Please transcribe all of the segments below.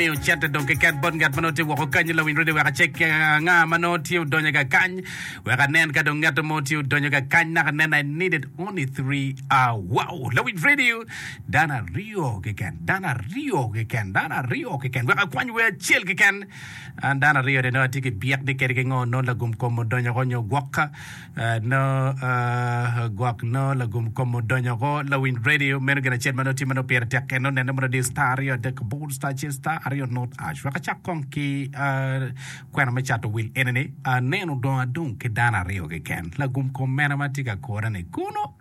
Miyo cente dong kiket bot ngat ma nongo tye woko kanyi lawiny redio wek acek ki anga ma nongo tye odonyo ka kany wek anen ka dong ngat mo tye odonyo ka kany naka nen I needed only three hour wow lawiny redio dano aryo keken dano aryo keken dano aryo keken wek akwany wer acel keken an dano aryo ni nongo atye ki byek ni kede ki ngo nongo lagum kom odonyo ko nyo gwok Nongo gwok nongo lagum kom odonyo woko lawiny radio. Meno gin acel ma nongo tye ma nongo pire tek kene onenne mono diyo star aryo adek aboro star acel star aryo not ash. Wek acak kong ki ah, kwena me cato wil enini. Aneno dongo adong ki dano aryo keken. Lagum kom mena ma tye ka kora-ni kunu?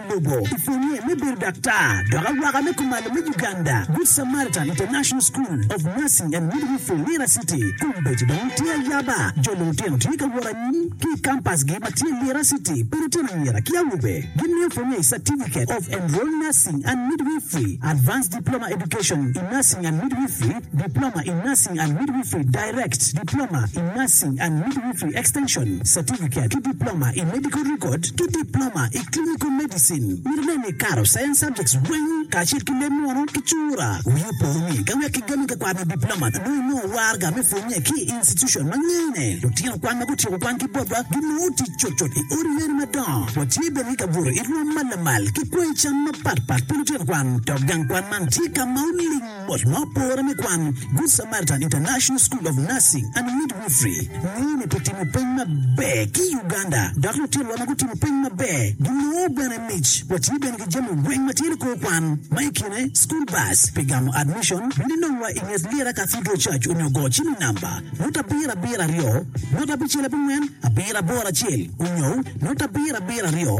Bobo, i pwonye me bedo daktar dok awaka me kumalo me Uganda, Good Samaritan International School of Nursing and Midwifery, Lira City, kombeddi dong tye ayaba. Jo lutino tye ka wot anyim ki i kampasgi ma tye Lira City pa lutino anyira ki awobe. Gimiyo pwonye i Certificate of Enrolled Nursing and Midwifery, Advanced Diploma Education in Nursing and Midwifery, Diploma in Nursing and Midwifery, Direct, Diploma in Nursing and Midwifery Extension, Certificate, ki Diploma i Medical Record ki Diploma i Clinical Medicine. Mito nen ni ikato Science subjects weng kacel ki leb munu ki cura. Wii opo ni ka wek kigammi ka kwar me Diploma nongo inongo warga me pwonye ki i institution ma ngene lutino kwan ma gutyeko kwan ki botwa ginongo tic cutcut i odi yeni madongo. Watye bene ki kabuto i rwom ma lamal ki kwanyi cam mapatpat pi lutino kwan dok gang kwan man tye ka ma oling Bot ma opore me kwan, Good Samaritan International School of Nursing and Midwifery ngeyo ni pi timo peny maber ki Uganda dok lutinwa ma gutimo peny maber ginongo bene mic. Watye bene ki jami weng ma tye ni kor kwan, ma i kine school bus pi gamo admission. Bino inongwa i nget Lira Cathedral Church onyo go cim i namba nota abiro abiro aryo nota abicel abongwen abiro aboro acel onyo nota abiro abiro aryo.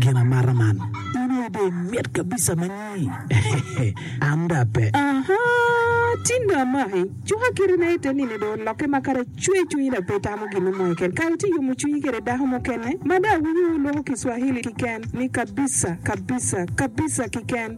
Gin amata man. In aye dong imit kabisa ma nyi. An da pe. Aha, tin dong amaki. Cuka kite na ite nini dong olokke ma kara cwer cwinyi da pe itamo gin mo keken. Kara ci iyomo cwinyi kede dako mukene ma da awinyo wuluko ki Swahili kiken ni kabisa, kabisa, kabisa kiken.